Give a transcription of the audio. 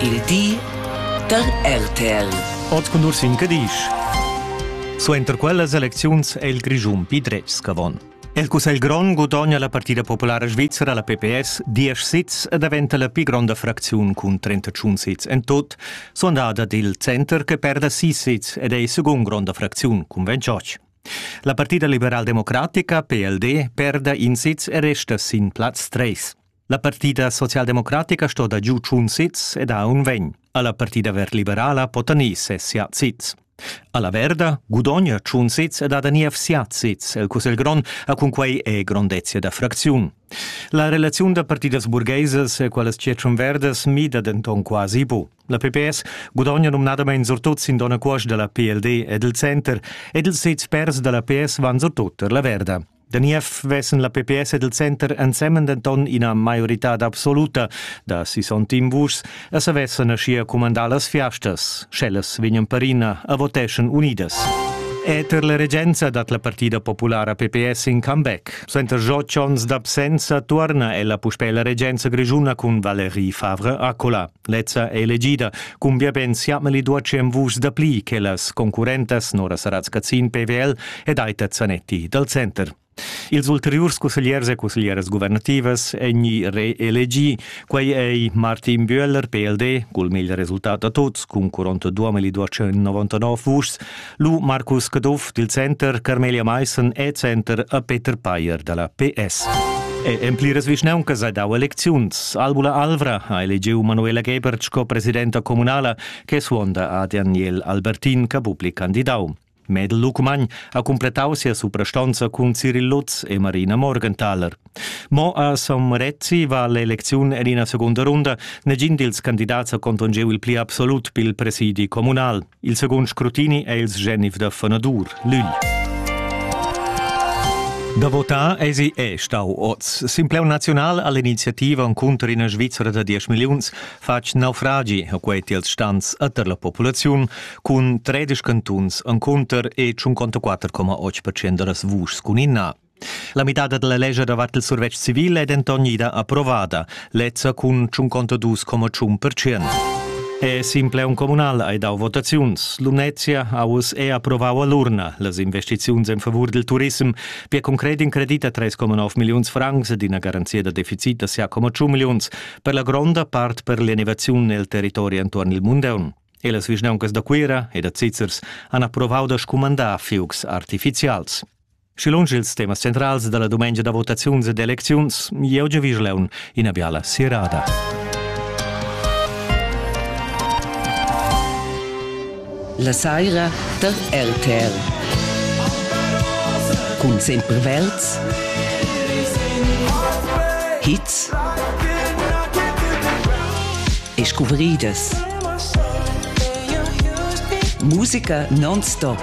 Il di da RTL. Oz cun Ursin Cadisch. Suenter quellas elecziuns è il Grischun pli dretgs ch'avon. Il Cussegl grond gudogna la partida populara svizra la PPS 10 sits e daventa la pli gronda fracziun cun 31 sits en tut, sondada dil center che perda 6 sits ed è il secund gronda fracziun cun 28. La partida liberal-democratica PLD perda in sitz e resta sin plaz 3. La partida socialdemocratica sto da giu tschun sits ed ha un vegn. Alla partida verliberala pota ni sessia sits. Alla Verda gudogna tschun sits ed ha da niev siat sits. El Cussegl Grond ha cunquei e grondezia da fracziun. La relaziun da partidas burgheisas e qualas tschetschun verdas mida denton quasi bu. La PPS gudogna nomnadamein surtut sin dona cuosch dalla PLD ed il center ed ils sets pers dalla PS van surtut per la Verda. Da niev vessen la PPS ed il center ensemen denton ina maioritad absoluta da 61 vuschs e savessen aschia cumandar las fiastas, sch'ellas vegnan perina a voteschan unidas. Eter la regenza dat la partida populara PPS in comeback. Senza otg onns d'absenza tuorna ella puspè la regenza grischuna cun Valérie Favre-Accola. Lezza è elegida. Cumbia ben siamel i duacem vus dapli che las concurrentas Nora Saratz-Cazin PWL ed Aita Zanetti dal center. Ils ulteriurs cussegliers e cusseglieras guvernativas èn reelegì. Quai è Martin Bühler, PLD, cul meglio resultat da tuts, cun 42.299 vuschs, Lu Marcus Caduff dil Center, Carmelia Meissen e Center a Peter Payer dalla PS. E en pliras vischnauncas ha dau elecziuns. Albula Alvra ha elegiu Manuela Gebert sco presidenta communala che suonda a Daniel Albertin che bupli candidau. Medel Lucmagn ha cumpletau sia suprastonza cun Cyril Lutz e Marina Morgenthaler. Mo a Sommerezzi va l'elecziun en ina secunda runda. Negin dils candidats ha contongeu il pli absolut pil presidi communal. Il secund scrutini è il sgenif da Fenadur, l'ügl. Da votar esi è stau oz. Simpleu naziunal all'iniziativa encunter ina Svizzera da 10 milliuns fatg naufragi a quei tiels stans a der la populaziun cun 13 cantuns encunter e 54,8% da las vuschs cun inna. La midada dalla lescha davart il survetsch civil è denton ida approvada, lezza cun tschunconta dus coma tschun percent. E Simpleon Communal hai dau votaziuns. Lumnezia ha uss è approvau all'urna las investiziuns en favur del turism per concret in credit a 3,9 milliuns francs ed ina garanzia da deficit da 6,2 milliuns per la gronda part per l'innovaziun nel territori entuorn il Mundeun. E las vischnauncas da Cuira e da Zizzers han approvau da scumandar fiugs artificials. Schi lunsch ils temas centrals dalla dumengia da votaziuns ed elecziuns, jeu giu Vischleun ina biala sirada. La saira der RTR. Cun sempre Welts, Hits e scuvriedas. Musica non-stop.